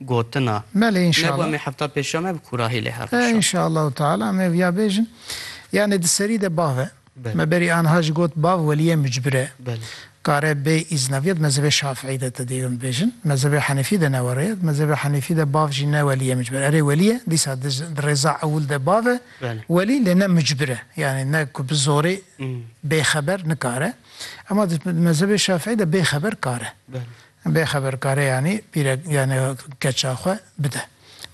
gotina. Belê inşallah. Nebû em ê hefta pêşa me bi kurahî lê her roj. Inşallahu teala em ê viya bêjin. Yanê di serî de bav e. Me berî anha jî got bav weliyê mucbir e. Kare bê îzna viya di mezhebê şafîî de te dê hûn bêjin. Di mezhebê henîfî de ne were ye. Di mezhebê henîfî de bav jî ne weliyê mucbir e. Erê welî ye dîsa di rêza ewil de bav e welî lê ne mucbir e. Yanê ne ku bi zorê bêxeber nikare. Ema di mezhebê şafîî de bêxeber kare. Bê xeberkareyanî pîrek yanî keça xwe bide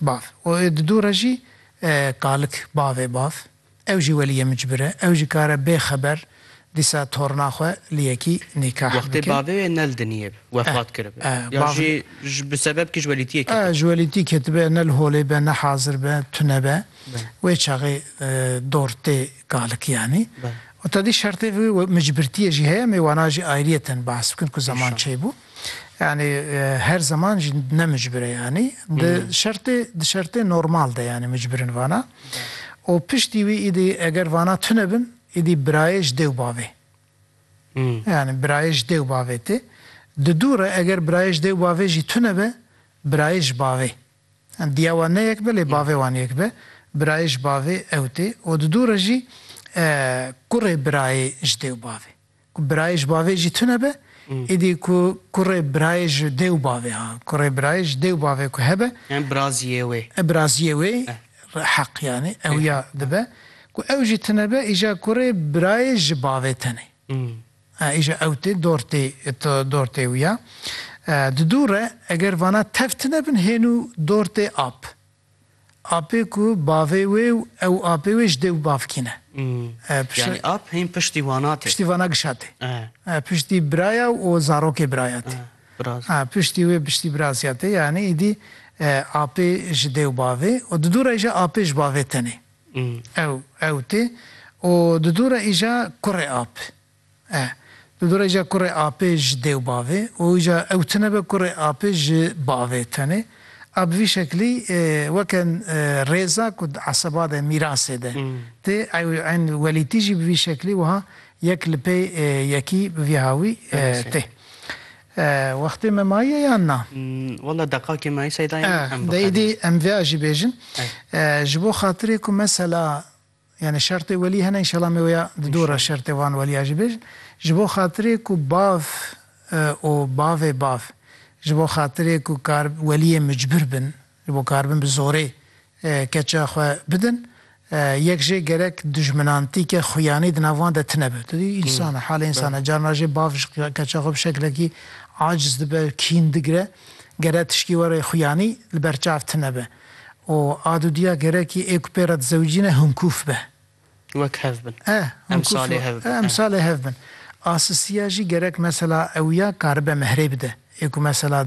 bav û di dû re jî kalik bavê bav ew jî welî yê min cibire ew jî kare bê xeber dîsa torna xwe li yekî nîkah bike. Wextê bavê wê nel diniyêb wefat kiribe ya jî bi sebeb kî ji welîtiyê ketibe? Ji welîtî ketibe nel holê be ne hazir be tune be wê çaxê dor tê Kalik yanî. Û tedî şertê vî micbirtîyê jî heye mê wana jî ayrîyeten behs bikin ku zeman çêy bû. Yanî her zeman jî ne micbir e yanî. Di şertê di şertê normal de yanî micbirin vana. Û piştî wî îdî eger vana tune bin îdî birayê ji dêw bavê. Yanî birayê ji dêw bavê tê. Di dû re eger birayê ji dêw bavê jî tune be birayê ji bavê. Diya wan ne yek be lê bavê wan yek be. Birayê ji bavê ew tê û di dû re jî kurê birayê ji dê û bavê. Ku birayê ji bavê jî tune be, êdî ku kurê birayê ji dê û bavê ha, kurê birayê ji dê û bavê ku hebe. Yani biraziyê wê. Biraziyê wê heq yani ew ya dibe. Ku ew jî tune be, îja kurê birayê ji bavê tenê. Îşa ew tê dortê dortê wî ya. Di dû re eger vana tev tine bin hênû dortê ap. Apê ku bavê wê û ew apê wê ji dê û bavkî ne. Yanî ap hîn piştî vana tê. Piştî vana gişa tê. Piştî biraya û zarokê biraya tê. Piştî wê piştî birazya tê. Yanî îdî apê ji dê û bavê û di dû re îşa apê ji bavê tenê. Ew, ew tê û di dû re îja kurê ap e. Di dû re îja kurê apê ji dê û bavê û îja ew tune be kurê apê ji bavê tenê. A bi vî şeklî weke rêza ku di eseba de, mîrasê de tê. Ew ên welîtî jî bi vî şeklî wiha yek li pê yekî bi vî hawî tê. Eh wextê me maye yan na? Walla deqakê me êsey dayê min em bixebin. Eh dê êdî em vêa jî bêjin. Eh ji bo xatirê ku mesela yanî şertê welî hene înşela me wêa di dor e şertê wan welîa jî bêjin. Ji bo xatirê ku bav û bavê bav ji bo xatirê ku kar welîyê micbir bin Ji bo karibin bi zorê keça xwe bidin, yek jê gerek dijminantîke xuyanî di nav wan de tine be. Tu dî însan e, halê însan e. Carna jê bav ji keça xwe bi şeklekî aciz dibe, kîn digire. Gerek tişkî were xuyanî li ber çav tine be û a dûdiya gerekî ê ku pê re dizewicîne hinkûf be. Wek hev bin. Eh, hinkûf be. Eh, emsalê hev bin. Asisiya jî gerek mesela ew ya karibe mihrê bide. Ê ku mesela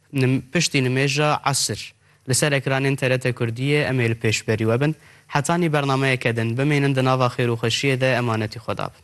Piştî nimêja esir li ser ekranên TRT Kurdiyê em ê li pêşberî we bin. Hetanî bernameyeke din, bimînin di nava xêr û xweşiyê de emanetî xwe dabin.